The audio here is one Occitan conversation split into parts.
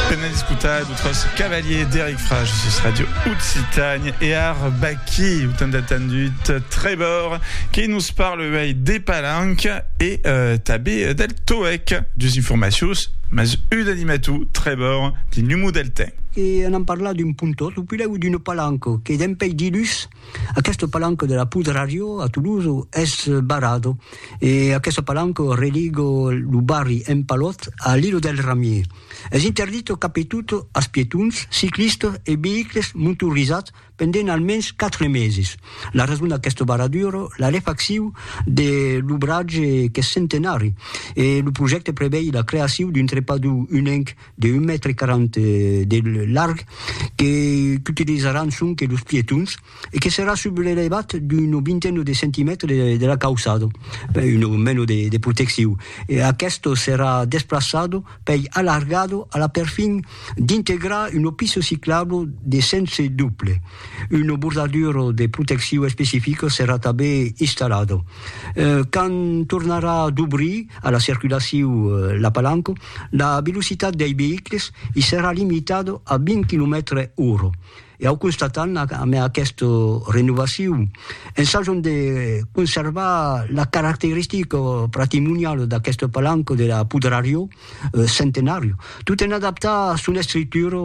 Pena discutar d'autres cavaliers d'Eric Frage sus Radio Occitanie et ar Baki, autant d'attendut Trébor, qui nous parle uei des palanques et euh, tabé del toec, dus informatius, mas ud animatou Trébor, di numou del temps. E anam parlar d'un pontot, ou pilèu d'una palanca, que dempeidilus, Aqueste palanco de la Poudre à Rio, a Toulouse, es barrado e aqueste palanco religo lo barri Empalot a l'Ilo del Ramier. Es interdito capetot as pietons, ciclistas e veïcles montorizats pendent almens 4 meses. La rason d'aqueste barraduro, la refaccion de l'obratge qu'es centenari e lo projècte prevei la creacion d'un trepador unenc de un mètre quaranta de larg que qu'utilizaràn sonque los pietons e que serà sub l'elevat d'una vintena de centimètres de la cauçada, una mena de de proteccion. E aqueste serà desplaçat pei alargat a la perfin d'integrar una pista ciclabla de sens doble. Una bordadura de proteccion especifica serà tanben installada. Quand tornarà dobrir a la circulacion la palanca, la velocitat dei veïcles i serà limitada a 20 quilomètres ora. E au constatam amé aquesta renovacion, ensajam de conservar la caracteristica patrimoniala d'aquesta palanca de la Pudrarió Centenària, tot en adaptar son estructura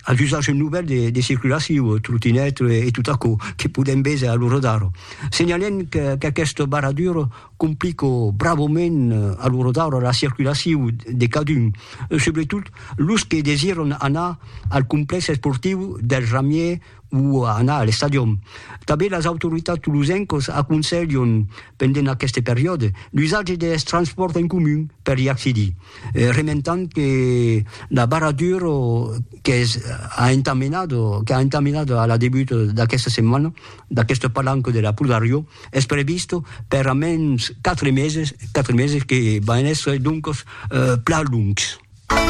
als usatges novèls de circulacion, trotinèt e tot aquò que podem véser a l'ora d'ara. Senhalem qu'aquesta barradura Complico bravament a lo rodaure la circulaciu de cadun, subretot los que desiràn anar al complèx esportiu del Ramier o anar a l'estadion. Tanben las autoritats tolosencas aconselhan, pendent aqueste periòde, l'usatge deth transpòrt en comun per i accedir, rementant que la barradura qu'es a entamenada, qu'a entamenada a la debut d'aquesta setmana, d'aqueste palanco de la Pulgariò es previst per a mens quatre meses, quatre meses que van èsser doncos plan longs.